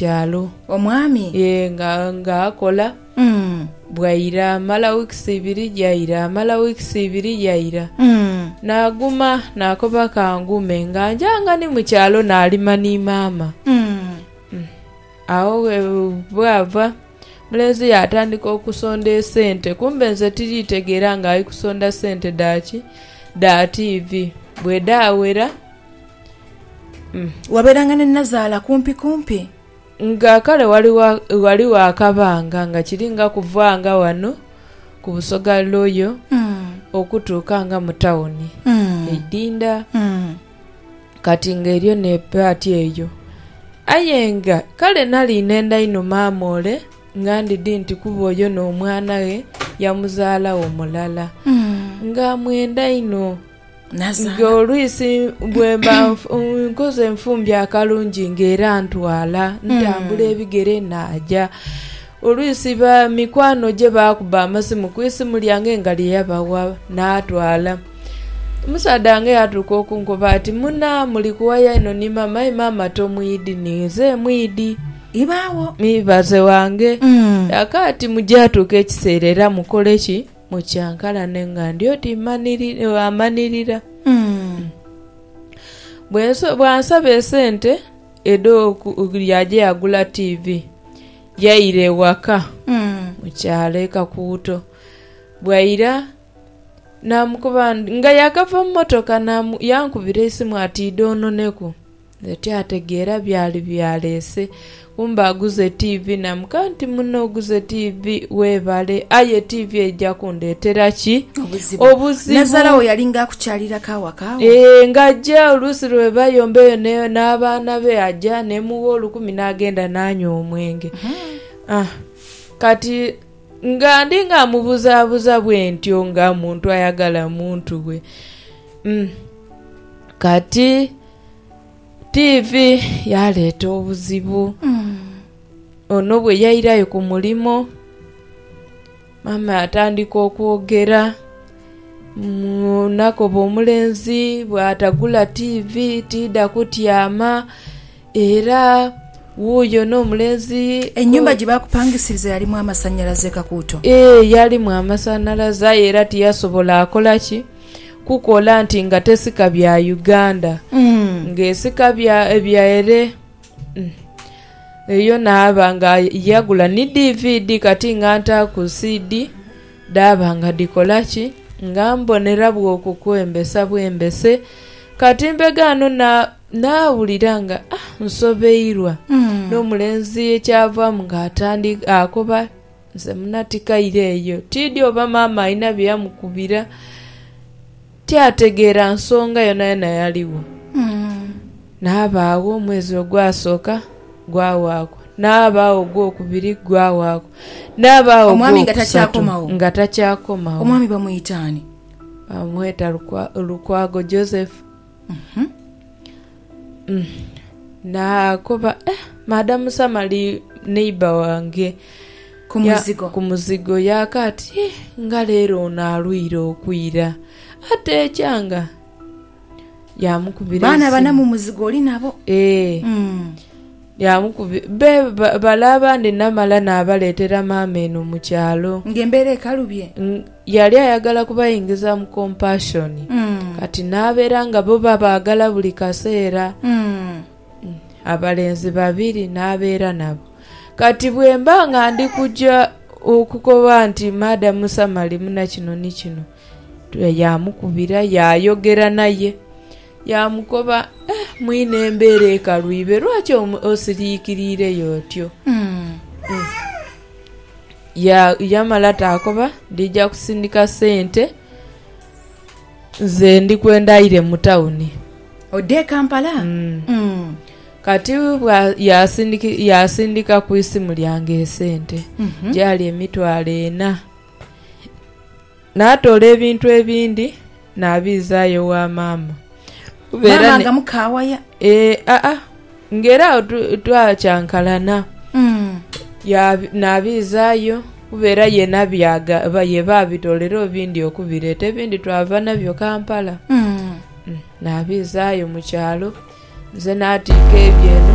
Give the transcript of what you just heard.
kyalo. Omwami. Yee, nga, nga akola. Mm. Bwaira, amala weeks ibiri, yaira, amala weeks ibiri, yaira. Mm. Naaguma, naakoba ka ngume, nga nja nga ni mu kyalo naalima ni maama. Mm. Mm. Agho bwe, bwava, omulenzi yaatandika okusonda esente, kumbe nze tiri tegeera nga ali kusonda sente dha ki? Dha tiivi. Bwedaawera. Wabeeranga ne Nazaala kumpi kumpi? Nga kale ghaligho akabanga nga kiri nga kuvaanga ghano ku Busoga Royal okutuuka nga mu tawuni eidhindha. Kati nga eriyo n'epaati eyo. Aye nga kale nali nenda inho maama ole nga ndidhi nti kuba oyo n'omwana ghe yamuzaalagho mulala. Nga amwenda inho. Nga olwisi bwemba nkoze enfumbyo akalungi nga era ntwala ntambula mm. ebigere naja olwisi ba mikwano gye bakuba amasimu ku isimu lyange nga lyeyabawa natwala omusaadha wange yatuuka okunkoba ati muna muli kuwaya ino ni mama aye mama tomwidi ninze mwidi ibaawo mibaze wange mm. yaka ati mujatuuka ekiseera era mukoleki Mu kyankalano nga ndi oti amanhirira, bw'ansaba esente edh'okulya aje agula tiivi yaire ewaka mu kyalo e Kakuuto. Bwaira naamukoba nga yaakava mu mmotoka yankubira eisimu ati idha ononeku. Nga tyategeera byali byaleese, kumbe aguze tiivi. Naamugamba nti, Munno oguze tiivi, weebale, aye tiivi eija kundeetera ki? Obuzibu. Nazaala wo yalinga akukyaliraku awaka wo? Ee, ng'aja oluusi lwe bayomba eyo n'abaana be, aja neemugha olukumi n'agenda naanywa omwenge. Kati nga ndi nga mubuzaabuza bwentyo nga muntu ayagala muntu we. Kati. Tiivi yaaleeta obuzibu. Ono bwe yairayo ku mulimo, maama yatandika okwogera. Nakoba omulenzi bwatagula tiivi tiidha kutyama. Era wuuyo n'omulenzi... Ennyumba gye baakupangisiriza yalimu amasanhalaze, Kakuuto? Yee, yalimu amasanhalaze aye era tiyasobola kola ki? kukola nti nga tesika bya Uganda mm. nga esika bya ebyaere mm. eyo naaba nga yagula ni DVD kati nga ntaaku CD dhaaba nga dhikola ki nga mbonera bwoku kwembesa bwembese kati mbegaano na nawulira nga ah nsobeirwa mm. n'omulenzi ekyavaamu nga atandika akoba Nze muna tikaire eyo. Tiidhi oba maama alina bye yamukubira. Tyategeera nsonga yonayona yaligho. Naaba agho omwezi ogwasooka gwawaaku. Naaba agho ogwokubiri gwawaaku. Naaba agho Omwami nga ogwokusatu takyakomawo? nga takyakomawo. Omwami bamwita ani? Bamweta Lukwa, Lukwago Joseph. Naakoba, Maada musama li neighbour wange ku muzigo. Yaaka ati, Nga leero ono alwaire okwira, ateekyanga. Yaamukubira esimu. Baana bana mu muzigo oli nabo? Ee. Be bale abandi namala naabaleetera maama eno mu kyalo. Ng'embeera ekalubye? Yali ayagala kubaingiza mu compassion kati n'abeera nga bo babaagala buli kaseera. Abalenzi babiri n'abeera nabo. Kati bwemba nga ndi kuja okukoba nti Madam Sam ali muna kino ni kino, yaamukubira yaayogera naye. Yaamukoba, Eh, mwine embeera ekalwibe, lwaki osiriikiriire y'otyo? Yamala taakoba ndija kusindika sente nze ndi kwenda aire mu tawuni. Ode e Kampala? Kati yaasindika ku isimu lyange esente, gyali emitwalo ena. Naatoola ebintu ebindi naabiizaayo ewa maama. Maama nga mukaawaya? Ee, aa, ng'era agho twakyankalana. Naabiizaayo kuba era ye nabyagaba, ye baabitoolera obindi okubireeta. Ebindi twava nabyo Kampala. Naabiizaayo mu kyalo, nze naatiika ebyo eno.